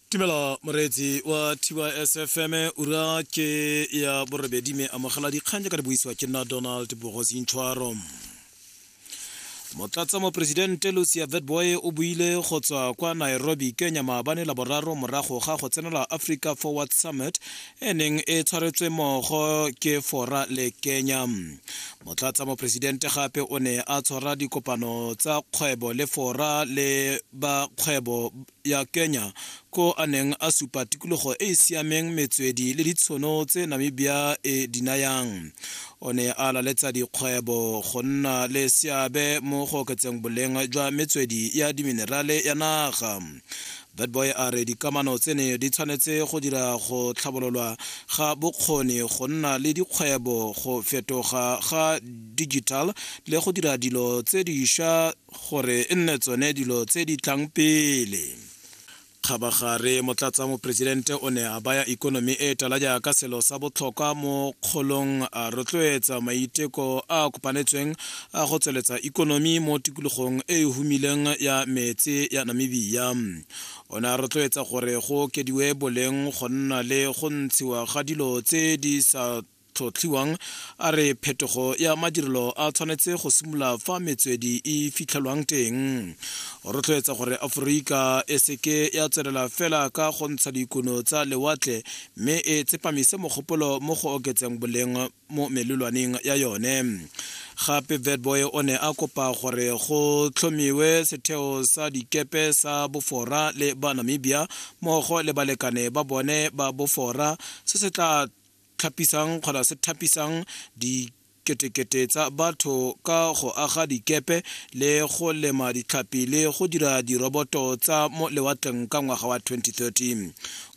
tumelo moreetsi wa tysfm ura ke ya borobedi me amogela dikgang jaaka di buisiwa ke nna donald bogosi ntshwaro motlatsa moporesidente lucia vetboy o buile go tswa kwa nairobi kenya maabane la boraro morago ga go tsenela africa forward summit e neng e tshwaretswe mogo ke fora le kenya motlatsa mopresidente gape o ne a tshwara dikopano tsa kgwebo le fora le ba kgwebo ya kenya ko a neng a supa tikologo e e siameng metswedi le ditshono tse namibia e di nayang o ne a laletsa dikgwebo go nna le seabe mo go oketseng boleng jwa metswedi ya diminerale ya naga That boy a re dikamano tsene di tshwanetse go dira go tlhabololwa ga bokgoni go nna le dikgwebo go fetoga ga digital le go dira dilo tse dišwa gore e nne tsone dilo tse di tlang pele kgabagare motlatsa moporesidente o ne a baya ikonomi e tala jaaka selo sa botlhokwa mo kgolong a rotloetsa maiteko a kopanetsweng a go tsweletsa ikonomi mo tikologong e e humileng ya metse ya namibia o ne a rotloetsa gore go okediwe boleng go nna le go ntshiwa ga dilo tse di sa tlhotlhiwang a re phetogo ya madirelo a tshwanetse go simolola fa metswedi e fitlhelwang teng o rotloetsa gore aforika e seke ya tswelela fela ka go ntsha dikuno tsa lewatle mme e tsepamise mogopolo mo go oketseng boleng mo melelwaneng ya yone gape vetboy o ne a kopa gore go tlhomiwe setheo sa dikepe sa bofora le ba namibia mmogo le balekane ba bone ba bofora se se tla tlhapisang kgona se thapisang di ketekete tsa batho ka go aga dikepe le go lema ditlhapi le go dira diroboto tsa mo lewatleng ka ngwaga wa 2013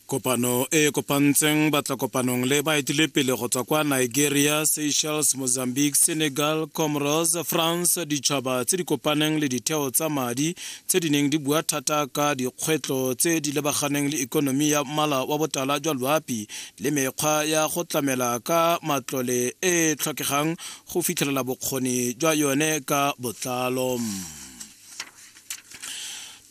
Kopano e e kopantseng batlakopanong le baetelepele go tswa kwa Nigeria, Seychelles, Mozambique, Senegal, Comoros, France, ditšhaba tse di kopaneng le ditheo tsa madi tse di neng di bua thata ka dikgwetlho tse di lebaganeng le ikonomi ya mmala wa botala jwa loapi le mekgwa ya go tlamela ka matlole e e tlhokegang go fitlhelela bokgoni jwa yone ka botlalo.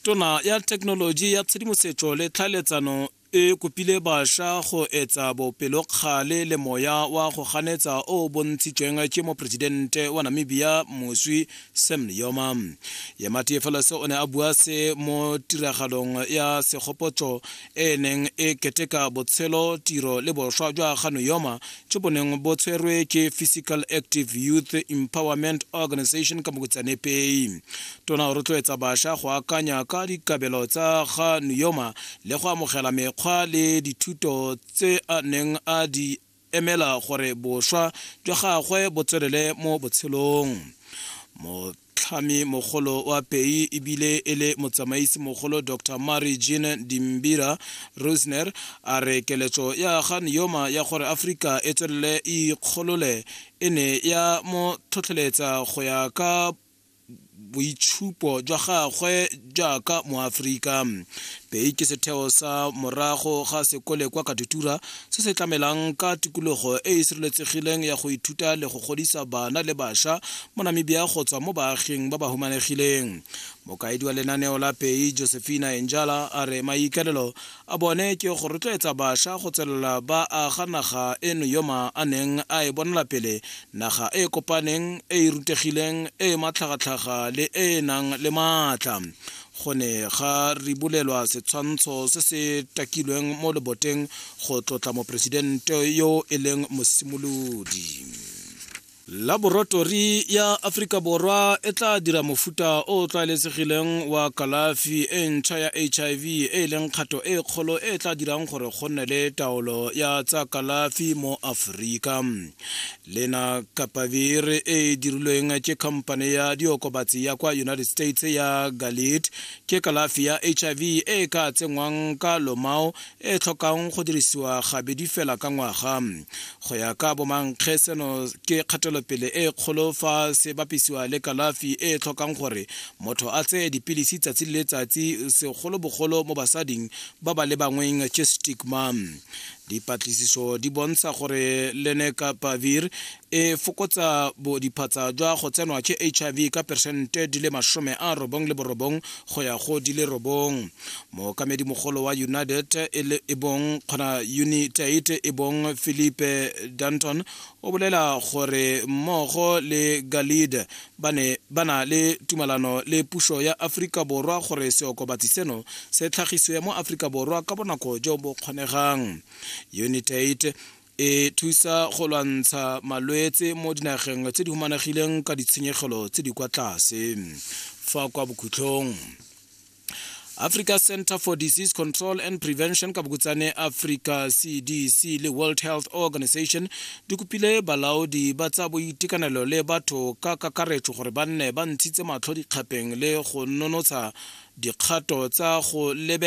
tona ya thekenoloji ya tshedimosetso le tlhaeletsano e kopile bašwa go etsa bopelokgale le moya wa go ganetsa o o bontshitsweng ke moporesidente wa namibia moswi sam yoma yemati felose o ne a bua se mo tiragalong ya segopotso e e neng e keteka botshelo tiro le boswa jwa ganuyoma jo bo neng bo tshwerwe ke physical active youth empowerment organization ka mokutsanepei tona o rotloetsa bašwa go akanya ka dikabelo tsa ganuyoma le go amogela mekgwa le dithuto tse a neng a di emela gore boswa jwa gagwe bo tswelele mo botshelong motlhami mogolo wa pei ebile e le motsamaisi mogolo dr mary jean dimbira rusner a re keletso ya ga neoma ya gore aforika e tswelele e ikgolole e ne ya mo tlhotlheletsa go ya ka boitshupo jwa gagwe jaaka moaforika pei ke setheo sa morago ga sekole kwa katutura se se tlamelang ka tikologo e e sireletsegileng ya go ithuta le go godisa bana le bašwa mo namibia go tswa mo baaging ba ba humanegileng mokaedi wa lenaneo la pei josephina enjala a re maikaelelo a bone ke go rotloetsa basha go tswelela ba aga naga eno yoma a neng a e bonela pele naga e e kopaneng e e rutegileng e e matlhagatlhaga le e e nang le maatla go ne ga ribolelwa setshwantsho se se takilweng mo leboteng go tlotla moporesidente yo e leng mosimolodi Laboratori ya Aforika Borwa e tla dira mofuta o o tlwaeletsegileng wa kalafi e ntšha ya HIV e e leng kgato e kgolo e e tla dirang gore go nne le taolo ya tsa kalafi mo Aforika. Lena Kapavir e e dirilweng ke khamphane ya diokobatsi ya kwa United States ya Galit ke kalafi ya HIV e e ka tsenngwang ka lomao e tlhokang go dirisiwa gabedi fela ka ngwaga go ya ka bomankge seno ke kgatelopele e kgolo fa se bapisiwa le kalafi e tlhokang gore motho a tseye dipilisi tsatsi le letsatsi segolobogolo mo basading ba ba le bangweng ke stigma dipatlisiso di bontsha gore lenekapavir e fokotsa bodiphatsa jwa go tsenwa ke hiv ka peresente di le masome a robong le borobong go ya go di le robong mookamedi mogolo wa united e bong kgona unitate e bong philipe danton o bolela gore mmogo le galide ba ne ba na le tumalano le puso ya aforika borwa gore seokobatsi seno se tlhagisiwe mo aforika borwa ka bonako jo bo kgonegang unitate e thusa go lwantsha malwetse mo dinageng tse di humanegileng ka ditshenyegelo tse di kwa tlase fa kwa bokhutlhong africa center for disease control and prevention ka bokutsane africa cdc le world health organization di kopile balaodi ba tsa boitekanelo le batho ka kakaretso gore ba nne ba ntshitse matlho dikgapeng le go nonotsha dikgato tsa go lebela